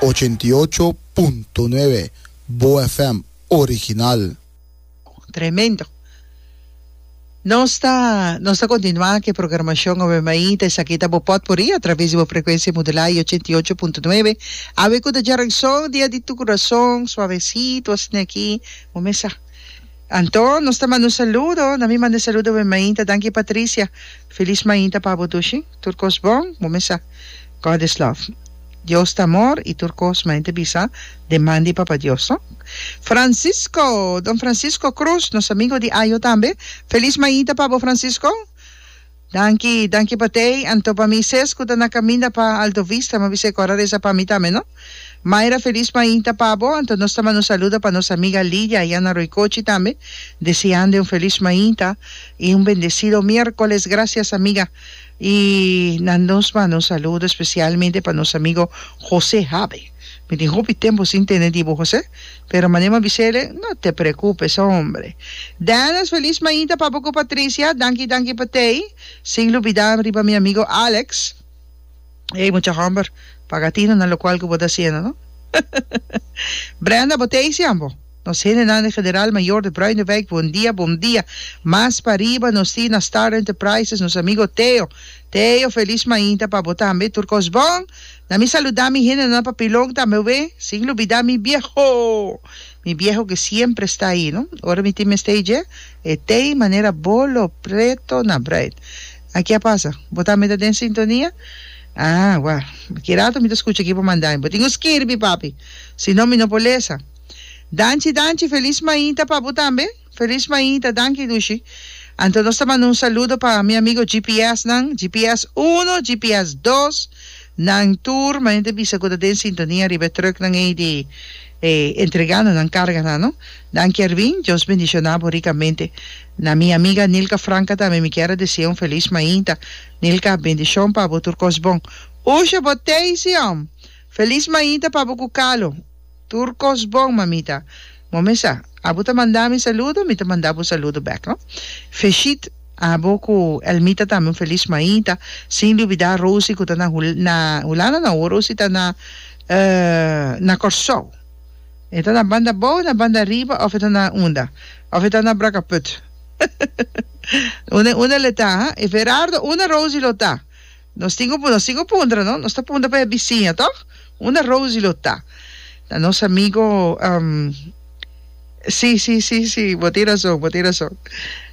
Ochenta i ocho punto nuebe Boa FM original. Tremendo. Nos ta nos ta continua cu e programacion awe maita esaki ta bo potpourri a traves di bo frecuencia modulada y ochenta i ocho punto nuebe awe cu ta djara un son dia di tu corazon suavecito asina aki bo mes sa anto nos ta manda un saludo na mi manda e saludo awe maita danki Patricia feliz maita pa bo tu shi. Tur kos bon, bo mester sa. God is love. Dios ta amor i tur kos main ta bisa den man di Papa Dios, no? Francisco! Don Francisco Cruz, nos amigo di Ajo tambe. Felis mainta pa bo, Francisco. Danki, danki pa t'ey. Anto pa mi ses cu ta na caminda pa Alto Vista, m'a bisa e cor a reza pa mi tambe, no? Mayra, felis mainta pa bo. Anto nos ta manda saludo pa nos amiga Lidia aya na Roycochi tambe, deseando e un felis mainta i un bendecido miercoles. Gracias, amiga. Y na nos manda un saludo especialmente pa nos amigo Jose Habe. Mi tin hopi tempo sin tende di bo Jose, pero manera m'a bisele, no te preocupe so hombre. Dennis, feliz mainta pa bo cu Patricia, danki danki pa tey, sin lubida riba mi amigo Alex. Ey mucha homber, paga tino na locual cu bo ta haciendo no. Brenda, bo tey si ambo? Nos hendenan di General Mayor di Bruineweg bon dia bon dia mas pa riba nos tin na Star Enterprises nos amigo Theo Theo felis mainta pa bo tambe tur kos bon na mi saluda mi hendenan papilon tambe we sin lubida mi bieho mi bieho ke siempre sta ahi no ora mi tin mester dje e tei manera bolo preto na Bruin aki a pasa bo tambe ta den sintonia ah wèl aki rato mi ta skucha aki bo manda mi bo tin ku skirbi papi si no mi no por lesa. Danchi danchi felis mainta pa bo tambe. Felis mainta danki Lushi. Anto nos ta manda un saludo pa mi amigo GPS nan, GPS uno, GPS dos, nan tur mainta bisa cu ta den sintonia riba e truck nan ey di entregando nan carga nan no. Danki Ervin, Dios bendiciona bo ricamente. Na mi amiga Nilka Franca tambe mi kier a decia un felis mainta. Nilka, bendicion pa bo tur cos bon. Usha bo Teisi, om! Felis mainta pa bo cu Calo. Tur kos bon, mamita. Momesa, abo ta manda mi saludo, mi ta manda bo saludo bek, no? Feshit abo ku Elmita tambe un felis maita, sin lubidá Rosie ku ta na Hu, na Hulanda no, awor Rosie ta na, e, na Kòrsou. E ta na banda bou, na banda riba òf e ta na unda? Òf e ta na Brakaput? Unda e unda el e ta, ha? E Verardo, unda Rosie lo ta? Nos tin ku nos tin ku puntra no. Nos ta puntra pa e bisiña tok unda Rosie lo ta ta nos amigo si si si si bo tin rason bo tin rason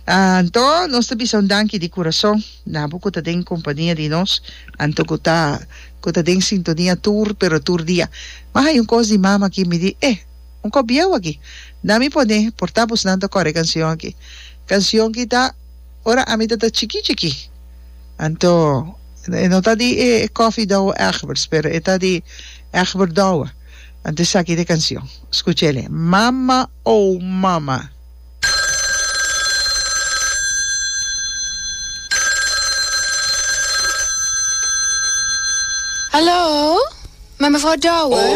anto nos ta bisa un danki di kurason na bo ku ta den kompania di nos anto ku ta ku ta den sintonia tur pero tur dia mas hay un kos di mama aki mi di eh un kos bieu aki na mi pone por ta abos nan ta kore e kansion aki kansion ki ta. Ora ami ta ta chikí chikí. Anto e no ta di e Koffie Douwe Egbers, pero e ta di Egbert Douwe. Anto esaki ta e canción. Scucha el'e, Mama oh mama. Hallo, Mevrouw Douwe?